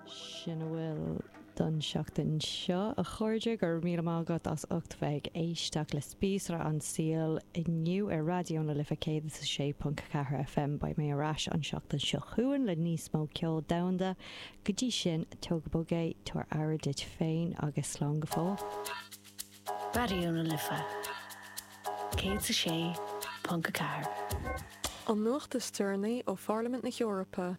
Sin a bhfuil don tseachtain seo, a chairde. Go raibh míle maith agat as ucht bheith ag éisteacht le Spíosra an tSaoil inniu ar Raidió na Life 106.4 FM. Beidh mé ar ais an tseachtain seo chugainn le níos mó ceol domhanda. Go dtí sin, tóg go bog é, tabhair aire duit féin agus slán go fóill. Raidió na Life 106.4. An nuacht is deireanaí ó Pharlaimint na hEorpa.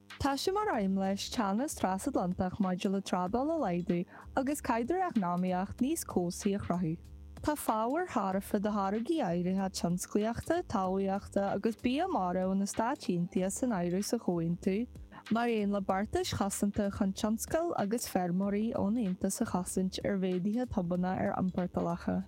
Tá sé mar aidhm leis teannas trasatlantach maidir le trádáil a laghdú agus caidreamh eacnamaíoch níos cobhsaí a chruthú. Tá fabhair tharaife do tháirgí áirithe tionsclaíochta, talmhaíochta agus bia mara ó na Stáit Aontaithe san áireamh sa chomhaontú, mar aon le beartais chosanta chun tionscail agus feirmeoirí ón Aontas a chosaint ar mhéaduithe tobanna ar iompórtálacha.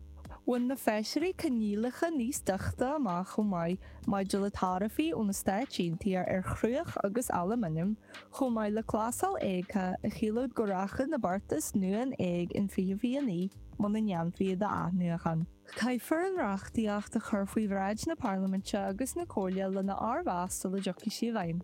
Bhain na Feisirí coinníollacha níos doichte amach chomh maith, maidir le taraifí ó na Stáit Aontaithe ar chruach agus alúmanam, chomh maith le clásail éagtha a chiallódh go rachadh na beartais nua in éag in 2029 muna ndéanfaí iad a athnuachan. Caithfear an reachtaíocht a chur faoi bhráid na Parlaiminte agus na Comhairle lena fhormheas sula dtiocfaidh sí i bhfeidhm.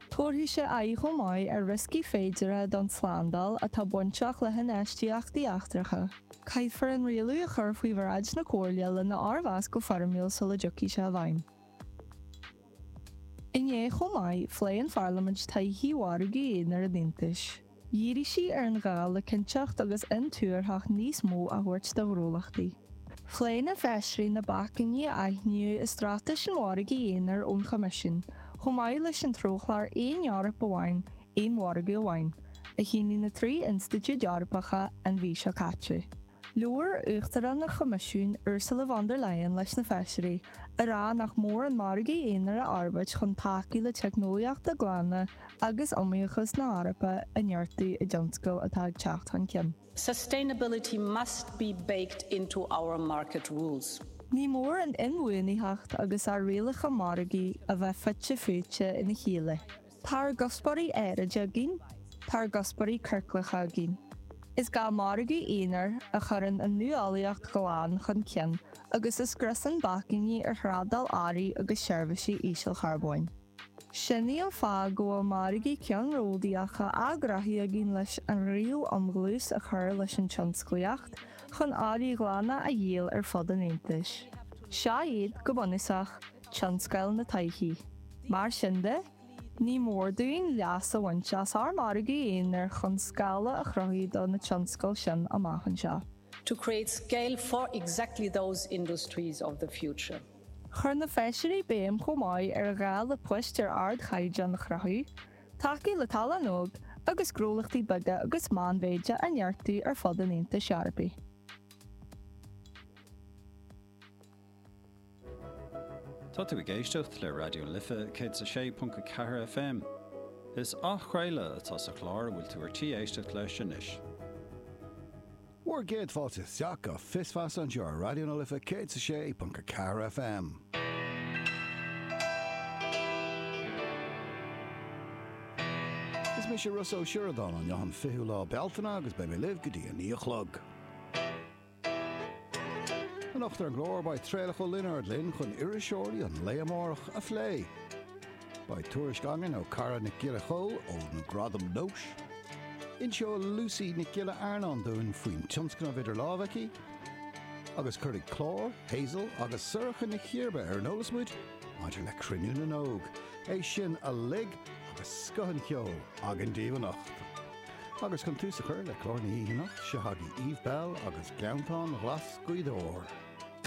Tabharfaidh sé aghaidh chomh maith ar rioscaí féideartha don tslándáil atá bainteach le hinfheistíochtaí eachtracha. Caithfear an rialú a chur faoi bhráid na Comhairle lena fhormheas go foirmiúil sula dtiocfaidh sé i bhfeidhm. Inné chomh maith, phléigh an Pharlaimint todhchaí mhargadh aonair an Aontais. Dhírigh sí ar an ghá le cinnteacht agus intuarthacht níos mó a thabhairt do ghnólachtaí. Phléigh na feisirí na bacainní a aithníodh i straitéis an mhargaidh aonair ón Choimisiún chomh maith leis an treochlár 'Aon Eoraip Amháin, Aon Mhargadh Amháin', a shínigh na trí institiúid Eorpacha an mhí seo caite. Labhair Uachtarán an Choimisiúin, Ursula von der Leyen leis na Feisirí, ag rá nach mór an margadh aonair a fhorbairt chun tacú le teicneolaíochtaí glana agus iomaíochas na hEorpa a neartú i dtionscail atá ag teacht chun cinn. Sustainability must be baked into our market rules. Ní mór an inbhuanaitheacht agus ár rialacha margaidh a bheith fite fuaite ina chéile. Tá ár gcuspóirí aeráide againn, tá ár gcuspóirí ciorclacha againn. Is gá margadh aonair a chuireann an nuálaíocht ghlan chun cinn agus a scriosann bacainní ar thrádáil earraí agus seirbhísí ísealcharbóin. Sin é an fáth go bhfuil margaí ceannródaíocha á gcruthú againn leis an riail um dhlús a chur leis an tionsclaíocht chun earraí ghlana a dhíol ar fud an Aontais. Seo iad, go bunúsach, Mar sin de, ní mór dúinn leas a bhaint as ár margadh aonair chun scála a chruthú do na tionscail sin amach anseo. Chuir na Feisirí béim chomh maith ar ghá le poist ar ardchaighdeán a chruthú, tacú le tallann óg agus gnólachtaí beaga agus meánmhéide a neartú ar fud an Aontais Eorpaigh. Tá tú ag éisteacht le Raidió na Life 106.4 FM. Is athchraoladh atá sa chlár a bhfuil tú ar tí éisteacht leis anois. Bhur gcéad fáilte isteach go Fios Feasa anseo ar Raidió na Life 106.4 FM. Is mise Ros Ó Sioradáin, an ceathrú is fiche lá Bealtaine agus beidh mé libh go dtí a naoi a chlog. Anocht ar an gclár beidh Traolach Ó Lionáird linn chun iriseoirí an lae amárach a phlé. Beidh tuairisc againn ó Cara Nic Giolla Chomhaill ó na Gradaim Nós. Inseoidh Lucy Nic Giolla Earnáin dúinn faoin tionscnamh idir lámha aici. Agus cuirfidh Clár, Hazel agus Sorcha Ní Chearbhaill ar an eolas muid maidir le Cruinniú na nÓg. É sin uilig agus scoth an cheoil againn daoibh anocht. Agus chun tús a chur le clár na hoíche anocht, seo chugaibh Eve Belle agus Gleanntáin Ghlas Ghaoth Dobhair.